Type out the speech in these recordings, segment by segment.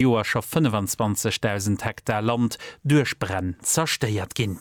Joer scho 25.000 Hektar Land duerch Bränn zerstéiert ginn.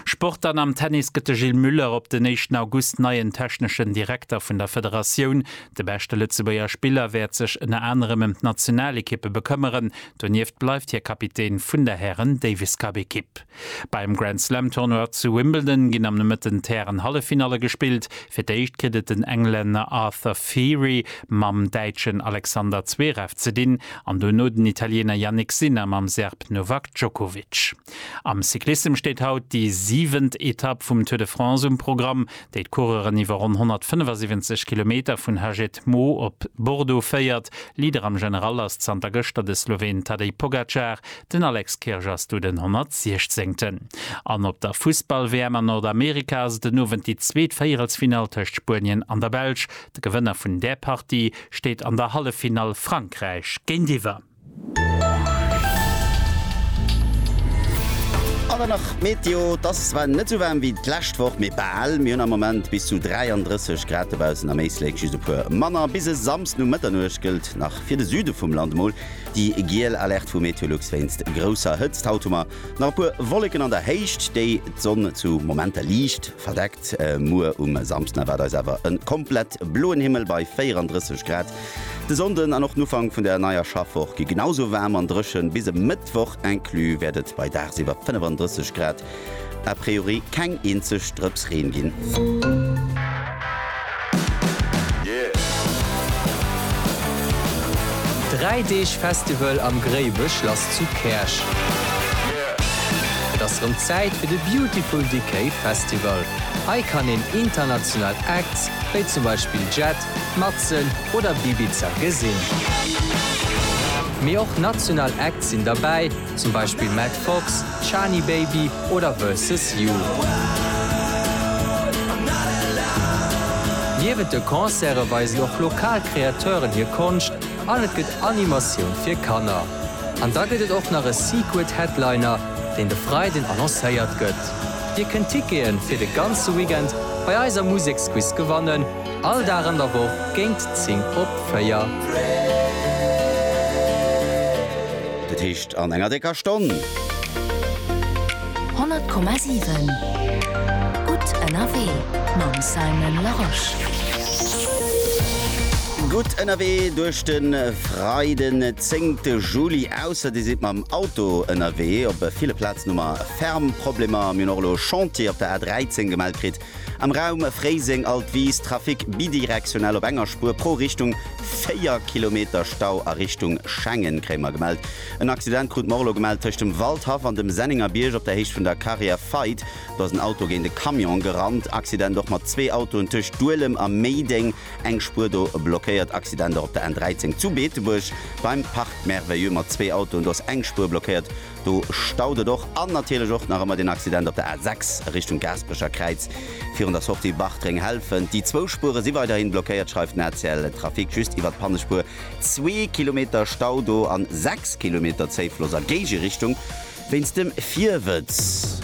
Sport An am Tennis gëtt de Gilles Muller op den éischten August neien techneschen Direkter vun der Federatioun. De beschte Lëtzebuerger Spiller wäert sech ënner anerem ëm d'Nationalekippe bekëmmeren. Donieft bleift hie Kapitän vun der Hären-Davis-Cup-Ekipp. Beim Grand Slam Tournoi zu Wimbledon ginn am Nomëtten d'Hären-Halleffinalle gespillt. Fir d'éischt kritt et den Englänner Arthur Feri mam Däitschen Alexander Zverev ze dinn an dono den Italiener Jannik Sinner mam Serb Novak Djokovic. Am Cyclissem steet haut déi siwent Etapp vum Tour de France um Programm, déi d'Coureuren iwwer ronn 175 Kilometer vun Hagetmau op Bordeaux féiert. Leader am General ass zanter gëschter de Sloween Tadej Pogacar, Den Alex Kirsch ass do den 116. An op der Fussball-WM an Nordamerika ass et den Owend déi zweet Véierelsfinall tëscht Spuenien an der Belsch. De Gewënner vun där Partie steet an der Halleffinall Frankräich géintiwwer. An dann nach d'Meteo, Et ass zwar net sou waarm wéi d'lescht Woch, mee bal. Mir hunn am Moment bis zu 33 Grad dobaussen, am Éislek just e puer manner. Bis e Samsden um Mëtternuecht gëllt nach fir de Süde vum Land emol Déi giel Alerte vu Meteolux wéinst grousser Hëtzt. Haut hu mer nach e puer Wolleken an der Héicht, déi d'Sonn zu Momenter liicht verdeckt. Muer um Samsden erwaart eis awer e komplett bloen Himmel bei 34 Grad. De Sonnden an och den Ufank vun der neier Schaffwoch gi genau esou waarm an dréchen. Bis e Mëttwoch inclus wäert et bei dagsiwwer 35 Grad A priori keng eenzeg Drëps Reen ginn. Dräi Deeg Festival am Gréiwechlass zu Käerch. Et ass rëm Zäit fir de Beautiful Decay Festival. Hei kann een international Acts wéi zum Beispill Jett, Matzen oder Bibiza gesinn. Mee och national Acts sinn derbäi. zum Beispill Matt Fox, Shani Baby oder Versus You. Niewent de Concerte weisen och lokal Kreateuren hir Konscht an et gëtt Animatioun fir Kanner. An da gëtt et och nach e Secret Headliner, deen de Freiden annoncéiert gëtt. Dir kënnt Tickete fir de ganze Weekend bei eiser Museksquiz gewannen. All Dag an der Woch géint 10 op 4. Dat heescht an enger décker Stonn. 100,7 Gutt ënnerwee mam Simon Larosche. Gutt ënnerwee duerch de Freiden, zéngte Juli. Ausser Dir sidd mam Auto ënnerwee. Op ville Plazen hu mer Fermproblemer. Mir hunn och elo e Chantier op der A 13 gemellt kritt. Am Raum Fréiseng, Altwis, Trafic bidirektionell op enger Spuer pro Richtung, 4 Kilometer Stau a Richtung Schengen kréie mer gemellt. En Accident krut mer och elo gemellt tëscht dem Waldhaff an dem Senningerbierg op der Héicht vun der Carrière Feit. Do ass en Auto géint e Camion gerannt. Accident och mat zwee Autoen tëscht Duelem a Méideng, eng Spuer do blockéiert. Accident och op der N 13 zu Beetebuerg beim Parc Merveilleux mat zwee Autoen, do ass eng Spuer blockéiert. Do staut et och. An natierlech och nach ëmmer den Accident op der A 6 a Richtung Gaasperecher Kräiz virun der Sortie Bartréng-Helfent. Déi zwou Spuere si weiderhi blockéiert, schreift den ACL Trafic. Just iwwer d'Pannespuer zwee Kilometer Stau do a sechs Kilometer Zéifloss a Géigerichtung wéinst dem Virwëtz.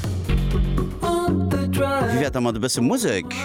Wéi wär et da mat e bësse Musek?